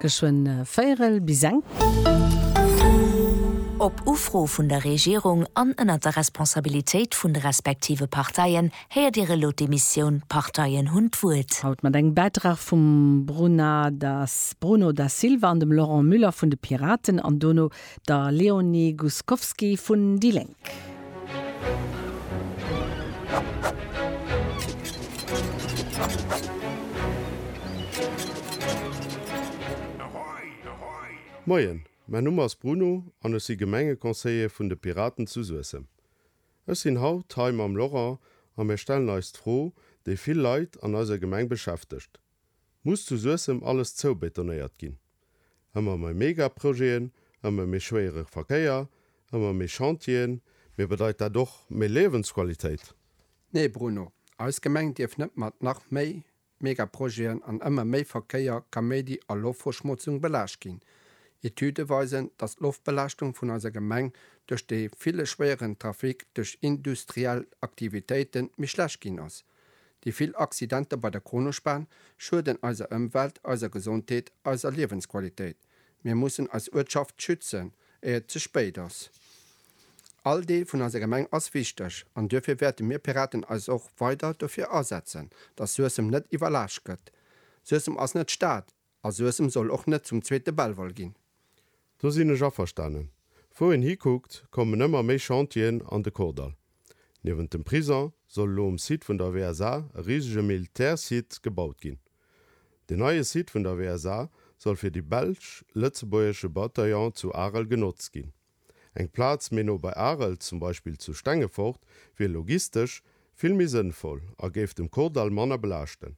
Geschwënn véierel bis eng. Op Ufro vun der Regierung an ënnert der Responsabilitéit vun de respektive Parteien héiert Dir elo d'Emissioun D'Parteien hunn d'Wuert. Haut mat engem Bäitrag vum Bruno Da Silva an dem Laurent Müller vun de Piraten an dono der Leonie Guscowski vun déi Lénk. Moien, mäin Numm ass Bruno an ech si Gemengeconseiller vun de Piraten zu Suessem. Ech sinn haut hei mam Laurent a mir stellen eis d'Fro, déi vill Leit an eiser Gemeng beschäftegt, Muss zu Suessem alles zoubetonéiert ginn? Ëmmer mei Megaprojeten, ëmmer méi schwéiere Verkéier, ëmmer méi Chantieren, mee bedeit dat och méi Liewensqualitéit? Nee Bruno, eis Gemeng dierf net mat nach méi Megaprojeten an ëmmer méi Verkéier, Kaméidi a Loftverschmotzung belaascht ginn. Etüde weisen, datt d'Loftbelaaschtung vun eiser Gemeng duerch dee ville schwéieren Trafic duerch industriell Aktivitéiten méi schlecht ginn ass. Déi vill Accidenter bei der Kronospan schueden eiser Ëmwelt, eiser Gesondheet, eiser Liewensqualitéit. Mir mussen eis Uertschaft schützen, éier et ze spéit ass. All Deel vun eiser Gemeng ass wichteg an duerfir wäerte mir Piraten eis och weider dofir asetzen, dass Suessem net iwwerlaascht gëtt. Suessem ass net Stad, A Suessem soll och net zum zweete Belval ginn. Do sinn ech averstanen. Wou een hikuckt, kommen ëmmer méi Chantieren an de Kordall. Niewent dem Prisong soll elo um Site vun der WSA e risege Militärssite gebaut ginn. Den neie Site vun der WSA soll fir de belsch-lëtzebuergesche Bataillon zu Arel genotzt ginn. Eng Plaz méi no bei Arel, zum Beispill zu Stengefort, wier logistesch vill méi sënnvoll a géif dem Kordall manner belaaschten.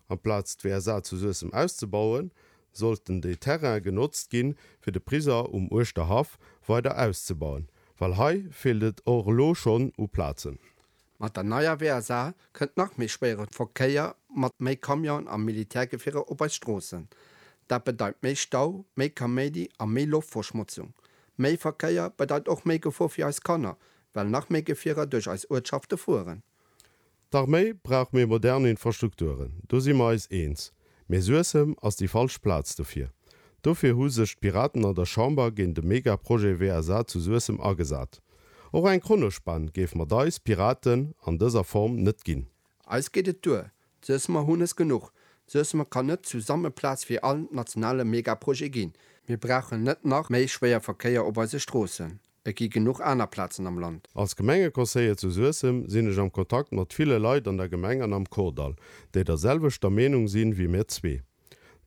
Amplaz d'WSA zu Suessem auszebauen, sollten déi Terraine genotzt ginn, fir de Prisong um Uerschterhaff weider auszebauen, well hei feelt et och elo schonn u Plazen. Mat der neier WSA kënnt nach méi schwéiere Verkéier mat méi Camionen a Militärgefierer op eis Stroossen. Dat bedeit méi Stau, méi Kaméidi a méi Loftverschmotzung. Méi Verkéier bedeit och méi Gefor fir eis Kanner, well nach méi Gefierer duerch eis Uertschafte fueren. D'Arméi brauch méi modern Infrastrukturen, do si mer eis eens, mee Suessem ass déi falsch Plaz dofir. Dofir hu sech d'Piraten an der Chamber géint e Megaprojet WSA zu Suessem agesat. Och eng Kronospan géif mer d'Eis, Piraten, an dëser Form net ginn. Eis geet et duer, d'Suessemer hunn es genuch. D'Suessemer kann net zu Sammelplaz fir all nationale Megaprojet ginn. Mir brauchen net nach méi Schwéierverkéier op eise Stroossen. Et gi genuch aner Plazen am Land. Als Gemengeconseiller zu Suessem sinn ech am Kontakt mat ville Leit an der Gemeng an am Kordall, déi der selwechter Meenung sinn wéi mir zwee.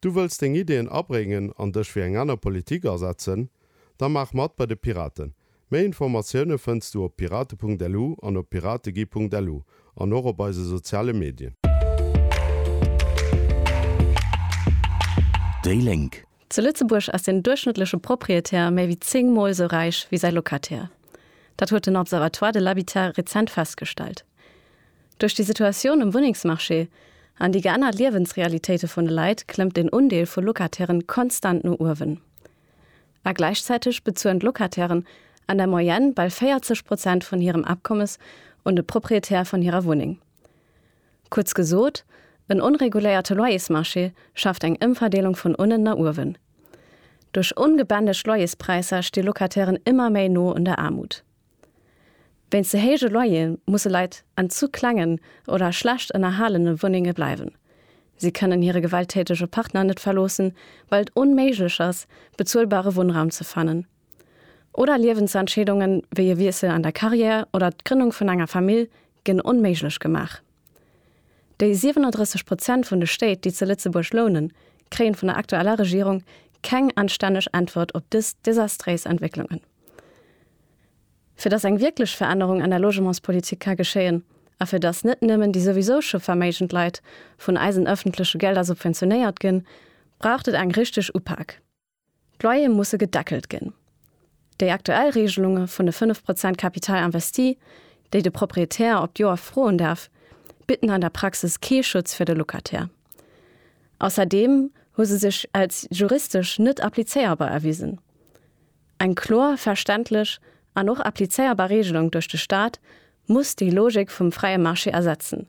Du wëlls deng Ideeën abréngen an dech fir eng aner Politik asetzen? Da maach mat bei de Piraten! Méi Informatioune fënns du op pirate.lu an op pirategie.lu an och op eise soziale Medien. Déi Lénk, Zu Lëtzebuerg ass den duerchschnëttleche Proprietär méi wéi zéng Mol esou räich wéi säi Locataire. Dat huet den Observatoire de l'habitat rezent festgestellt. Duerch déi Situatioun um Wunnengsmarché an déi geännert Liewensrealitéite vun de Leit klëmmt den Undeel vu Locatairen konstant no uewen. A gläichzäiteg bezuelen d'Locatairen an der Moyenne bal 40 Prozent vun hirem Akommes un de Proprietär vun hirer Wunneng. Kuerz gesot, en onreguléierte Loyersmarché schaaft eng Ëmverdeelung vun unnen na uewen. Duerch ongebändegt Loyerspräisser sti Locatairen ëmmer méi no un der Aarmut. Wéinst ze héije Loyere musse Leit an zu klengen oder schlecht ënnerhalene Wunnenge bleiwen. Si kënnen hire gewalttätege Partner net verloossen, well et onméiglech ass, bezuelbare Wunnraum ze fannen. Oder Liewensentscheedungen, wéi e Wiessel an der Carrière oder d'Grënnung vun enger Famill, ginn onméiglech gemaach. Déi 37 Prozent vun de Stéit, déi zu Lëtzebuerg lounen, kréien vun der aktueller Regierung keng anstänneg Äntwert op dës desastréis Entwécklungen. Fir dass eng wierklech Verännerung an der Logementspolitik ka geschéien a fir dass net nëmmen déi souwisou scho verméigend Leit vun eisen ëffentleche Gelder subventionéiert ginn, braucht et eng richteg Upak. D'Loyere musse gedeckelt ginn. Déi aktuell Reegelunge vun de 5 Prozent Capital investi, déi de Proprietär op d'Joer froen däerf, bidden an der Praxis kee Schutz fir de Locataire. Ausserdeem hu se sech als juristesch net applizéierbar erwisen. Eng kloer, verständlech an och applizéierbar Reegelung duerch de Staat muss déi Logik vum fräie Marché ersetzen,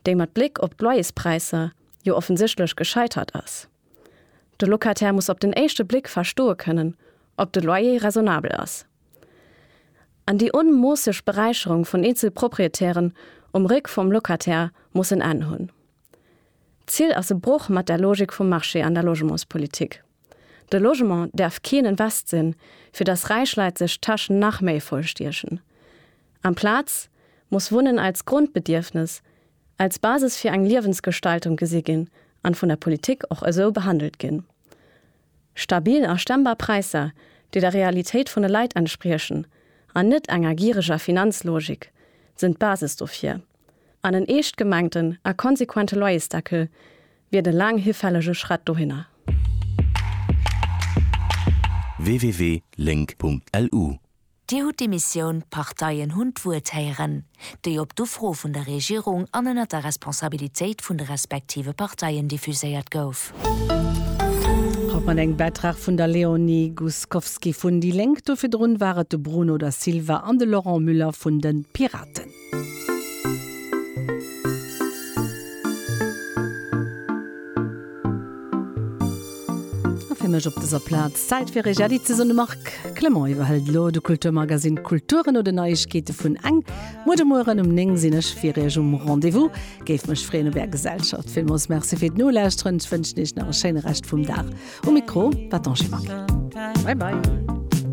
déi mat Bléck op d'Loyerspräisser jo offensichtlech gescheitert ass. De Locataire muss op den éischte Bléck verstoe kënnen, ob de Loyer raisonnabel ass. An déi onmoosseg Beräicherung vun eenzel Proprietären um Réck vum Locataire muss en Enn hunn. D'Zil ass e Broch mat der Logik vum Marché an der Logementspolitik. De Logement däerf keen Invest sinn, fir datt räich Leit sech d'Täschen nach méi vollstiechen. Amplaz muss Wunnen als Grundbedierfnes, als Basis fir eng Liewensgestaltung gesi ginn an vun der Politik och esou behandelt ginn. Stabil a stemmbar Präisser, déi der Realitéit vun de Leit entspriechen an net enger gireger Finanzlogik, sinn d'Basis dofir. An en eescht gemengten a konsequente Loyersdeckel wier de laang hifällege Schrett dohinner. www.link.lu Dir hutt déi Missioun, d'Parteien hunn d'Wuert héieren, déi op d'Ufro vun der Regierung an ënnert der Responsabilitéit vun de respektive Parteien diffuséiert gouf. Haut mat engem Bäitrag vun der Léonie Guscowski vun déi Lénk. Do virdrun war et de Bruno Da Silva an de Laurent Müller vun de Piraten. A fir mech op dëser Plaz Zäit fir Eech Äddi ze soen. De Marc Clement iwwerhëlt elo de Kulturmagazine Kultur no den Neiegkeete vun eng. Muer de Mueren um 9 sinn ech fir Iech um Rendez-vous. Géif mech freeën op Är Gesellschaft. Villmools Merci fir d'Nolauschteren. Ech wënschen Iech nach e schéine Rescht vum Dag. Um Mikro war d'Angie Maquet. Bye bye.